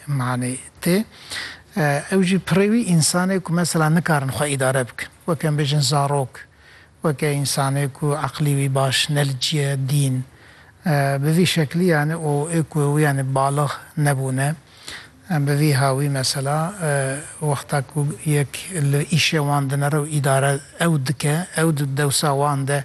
Manê tê. Ew jî pirê wî însanê ku mesela nikarin xwe îdare bikin. Weke em bêjin zarok, weke însanê ku eqlî wî baş ne li cîye dîn. Bi vî şeklî yanî û ê ku ew yanî balix nebûne. Em bi vî hawî mesela wexta ku yek li îşê wan dinere û îdare ew dike, ew di dewsa wan de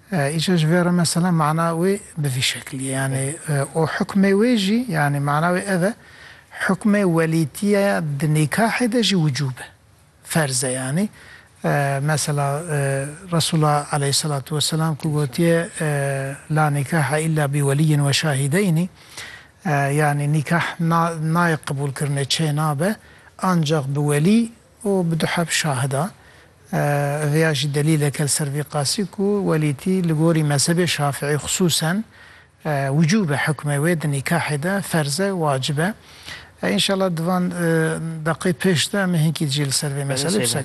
Îca ji vê re mesela mana wê bi vî şeklî ye yanî û hukmê wê jî yanî mana wê ev e hukmê welîtîye ya di nîkahê de jî wicûb e ferz e yanî mesela Resûla eleyhîsselatu weselam ku gotiye La nîkahe îlla bi welîyin we şahîdeynî yanî nîkah nayê qebûlkirinê çê nabe ancax bi welî û bi du heb şahida vêya jî delîleke li ser vî qasî ku welîtî li gorî mezhebê şafîî xisûsen wicûb e hukmê wê di nîkahê de ferz e wacib e. Înşallah di van deqê pêş de em ê hinkî jî li ser vê meselê qise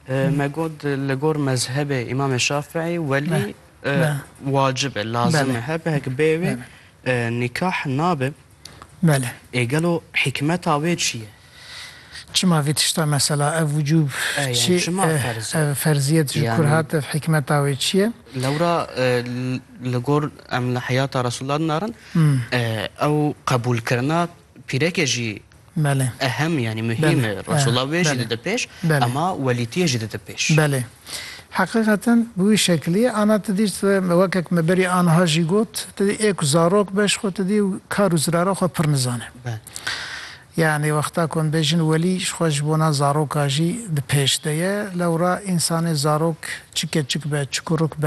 kirin. Me got li gor mezhebê îmamê şafîî welî wacib e lazim e her bihek bê wê nîkah nabe. Belê. Ê gelo hîkmeta wê çi ye? Çima vê tişta mesela ev wucûb çi ye, ev ferziyet ji kur hat, ev hikmeta wê çi ye? Lewra li gor em li heyata Resûlullah din arin, ew qebûlkirina pîrekê jî ehem yanî muhîm e. Resûlullah wê jî dide pêş, ema welîtiyê jî dide pêş. Belê. Heqîqeten bi wî şekilî ye. Ana tu dî wekek me berî aniha jî got, tu dî ê ku zarok be ji xwe tu dî kar û zirara xwe pir nizane. Yanî wexta ku em bêjin welî ji xwe ji bona zaroka jî bi pêş de ye. Lewra însanê zarok çi keçik be, çi kuruk be,